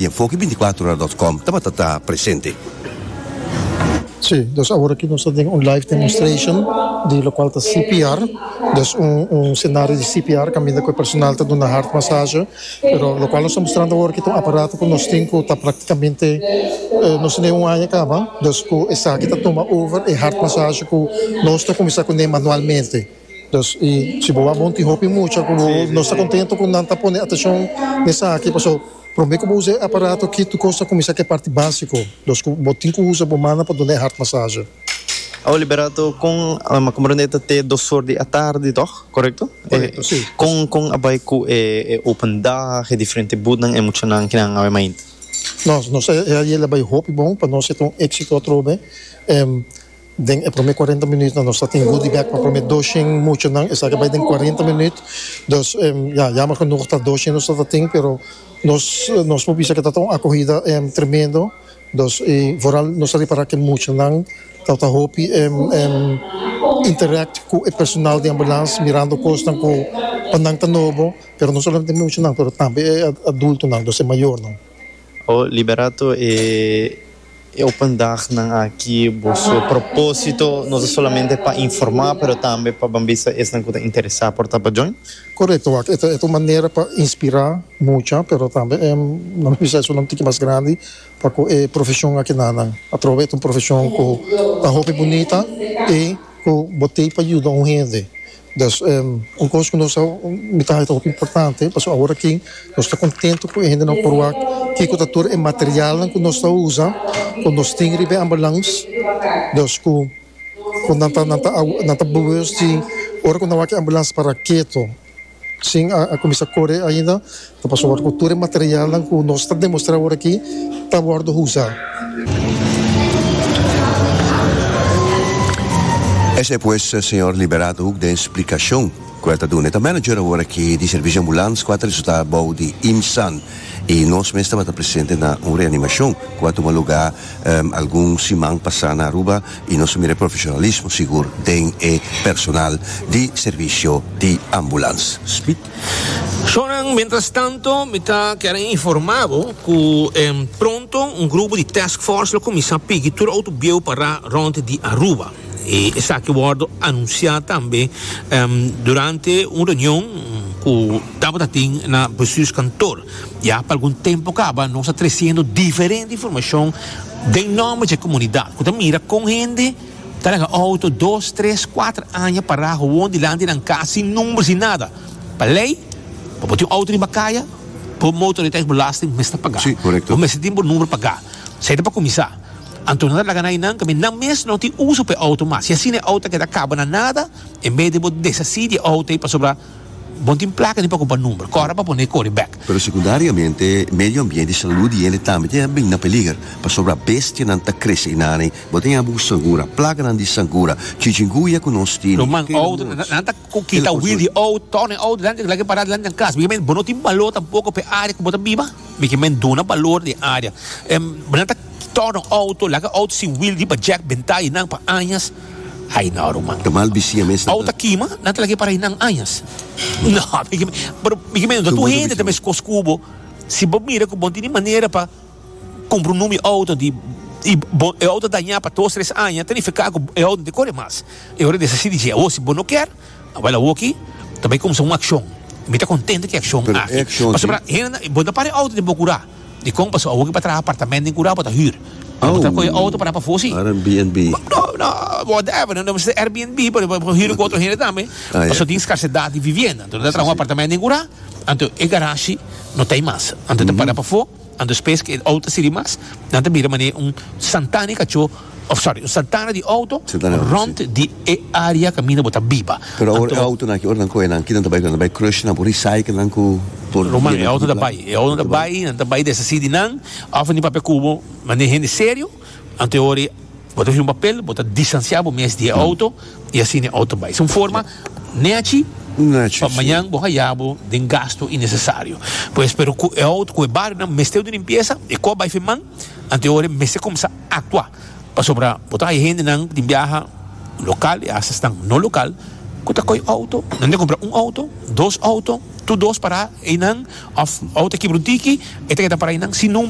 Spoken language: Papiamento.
y enfoke binticuatro ora dot com tabata ta presente. Si, dus aworaki nos ta den un live demonstration di locual ta CPR, dus un scenario di CPR caminda cu e personal ta duna heart massage, pero locual nos ta mostrando aworaki ta un aparato cu nos tin cu ta practicamente nos ta den un aña caba, dus cu esaki ta tuma over e heart massage cu nos ta cuminsa cu ne manualmente. Nos i si bo a bon tin hopi mucha ku bo no sta kontentu ku nan ta pone atenshon na esaki paso promé ku bo usa e aparato ki tur kos a kuminsá ku e parti básiko dos ku bo tin ku usa bo mannan pa duna e hart masaje. Awe Liberato kon a mi komprende e ta te dos or di atardi tòg korekto? Korekto si. Kon kon a bai ku e open dag e diferente butnan e muchanan ki nan awe mainta? Nos nos e ayel a bai hopi bon pa nos e ta un éksito atrobe Den e prome cuarenta minütnan nos a tin goodie bag pa prome doshen muchanan, esaki a bai den cuarenta minüt, dus ya, yammer genoeg ta doshen nos ta tin, pero nos nos por bisa ke ta ta un acogida tremendo, dus y vooral nos a repara ke muchanan ta ta hopi interact cu e personal di ambulance mirando cosnan cu pa nan ta nobo, pero no solamente muchanan pero tambe e adultonan, dus e mayornan. Oh, liberato e open dagnan aki boso propósito no ta solamente pa informá pero tambe pa ban bisa esnan ku ta interesá por ta pa join? Korekto wak, e ta un manera pa inspirá mucha pero tambe e nan lo bisa esun un tiki mas grandi pa ku e profeshon a keda nan atrobe. E ta un profeshon ku ta hopi bunita i ku bo tei pa yuda un hende Des un cos cu nos ta mira haya ta hopi importante pasobra awor aki nos ta contento cu e hende nan por wak kico ta tur e materialnan cu nos ta usa cu nos tin riba e ambulance dus cu cu nan ta nan ta awe nan ta bewust di ora cu nan wak e ambulance para keto sin a a cuminsa core ainda. Ta por sòru ku tur e materialnan ku nos ta demostrá ora akí ta wòrdu usá. Esei pues, señor Liberato hoek den splikashon ku el ta duna. E ta manager awor akí di Servisio Ambulans ku a ta resultá bou di IMSAN i nos mes tabata presente na un reanimashon ku a tuma lugá algun siman pasá na Aruba i nos a mira e profeshonalismo sigur den e personal di Servisio di Ambulans. Shownan, mientras tanto mi ta kere informa bo cu pronto un grupo di task force lo cuminsa pigi tur autobio pa ra rond di Aruba. E esaki wordo anuncia tambe durante un reunion cu tabata tin na bestuurskantoor. Ya pa algun tempo caba nos a treciendo diferente informacion den nomber dje comunidad cu ta mira con hende Ta laga auto dos, tres, kuater aña pará gewoon dilanti nan kas sin number, sin nada. Pa lei, pa bo tin un auto riba kaya, bo motoriteitsbelasting mes ta pagá. Bo mester tin bo number pagá. Esei ta pa kuminsá. Anto nan ta laga na einan kaminda nan mes no tin uso pa e auto mas. I asina e auto ta keda kaba na nada, en bes di bo desasí di e auto ei pasobra. Bon tin plaka di preocupa number kora pa pone e cori bek. Pero secundariamente medio ambiente y salud di hende tambe tin a bini na peliger pasobra bestianan ta crece y nana y bo ta yabi un sangura, plaganan di sangura, chichinguya cu nos tin. Lo mas ouden nan ta kita wild di oud, torna e oud delante gulakier para delante nan cas, miki men bo no tin balor tampoco pa e area cu bo ta biba, miki men duna balor di e area, nan ta torna oud, laki oud sin wild riba jack benta y nan pa añas. Ay no ruman. Ta mal bisia mes nan. Ou ta kima, nan ta lag'e para ei nan añas. No, miki, pero miki mendo ta tur hende ta meskos ku bo. Si bo mira ku bon tin e manera pa kumpra un numi outo di i bo e outo dañá pa dos tres aña ta nifiká ku e outo no te kore mas. E ora di esaki si di dje awor si bo no kier, awor awor aki ta bai kumsa un akshon. Mi ta kontento ki akshon aki. Pasobra hende nan bo ta para e outo den bo kurá. Dikon paso awor ki pa traha apartamento den Curao bo ta hür. Bo ta coge auto para pafo si. Airbnb. No, no, whatever, no mester Airbnb pero bo ta hür cu otro hende tambe. Paso tin scarcedad di vivienda. Anto no ta traha un apartamento den Cura, anto e garashi no ta ey mas. Anto ta para pafo, anto spes cu e auto ta sirbi mas, nan ta mira mane un santana di cacho. Of sorry, un santana di outo rond di e area kaminda bo ta biba. Pero awor e outonan aki, ora nan kohe nan, kinan ta bai ku nan? Nan ta bai krushe, nan por recycle nan ku por. Ruman, e outo ta bai. E outo ta bai, nan ta bai desasi di nan, of nan tin papia ku bo, nan den hende serio, anto e ora bo ta hasi un papel, bo ta distansia bo mes di e outo, i asina e outo bai. Es un forma nechi pa mañan bo haya bo den gastu innesesario. Pues, pero ku e outo, ku e barionan mester duna limpiesa, e koh bai firman, anto e ora mester kumsa. aktua pasobra bo ta haya hendenan ku tin biaha lokal i hasta esnan no lokal ku ta koi outo, nan ta kumpra un outo, dos outo, tur dos pará einan òf outo e kibra un tiki e ta keda pará einan sin.